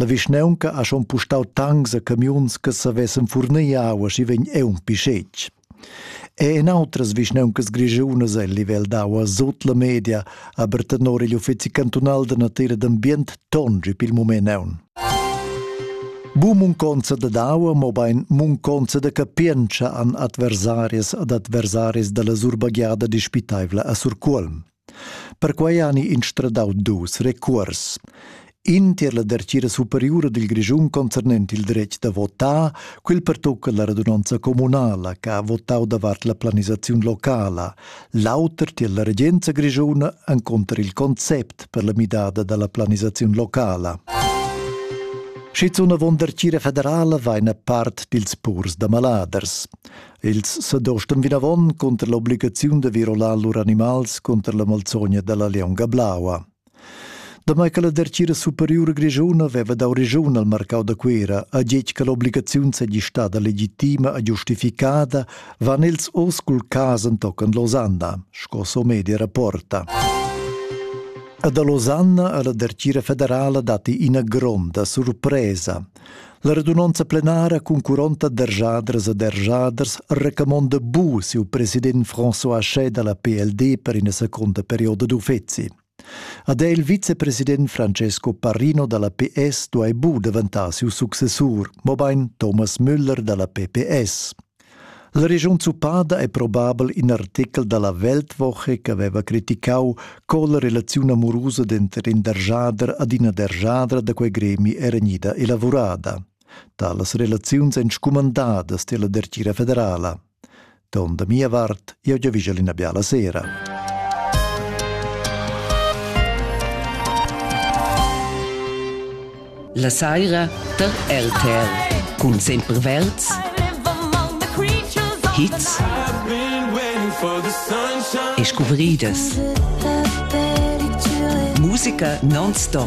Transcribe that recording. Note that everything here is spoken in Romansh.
La vischnaunca ha schon pustau tancs a camiuns che savessen furnir aua schi vegn eunc schetg. E en outras vischnauncas grischunas el livel d'aua sut la media aber tenor igl uffizi cantunal da natira d'ambient tongi pil mument aun. Bu munconza da daua, mobein munconza da capientscha an adversarias ad adversaris dalla surbagliada dispitaivla a Surcuolm. Perquei hani instradau dus recuors. In tier la dertgira superiura dil Grischun concernent il dretg da votar, quel pertocca la radunonza communala che ha votau davart la planisaziun locala, l'auter tier la regenza grischuna enconter il concept per la midada dalla planisaziun locala. Schizun avon dertgira federala vaina part dils purs da maladers. Els s'adostan vinavon cunter l'obligaziun da virolar lur animals cunter la malzogna dalla leonga blaua. Damai che la dertgira superiura grischuna veva dau regiun al marcau da Cuera, a getg che l'obligaziun seigi stada legitima e giustificada, van els oz cul cas entochen Losanna, sco Somedia rapporta. A da Losanna alla dertgira federala datti ina gronda surpresa. La radunonza plenara cun 40 derjadras e derjaders recamonda bu siu president François Hachet dalla PLD per ina secunda perioda d'uffeci. Ad el vicepresident Francesco Parrino dalla PS duai bu daventar siu successur, mobein Thomas Müller dalla PPS. La regiun zuppada è probabel in artechel da la Weltwoche ch'aveva criticau co la relaziun amurusa denter in derjader ad ina derjadra da quei gremi era gnida elavurada. Talas relaziuns ein scumandadas tier la dertgira federala. Ton da mia vart, jeu giavischel ina biala sera. La saira tar RTL cun sempre verds hits e scuvridas. Musica non-stop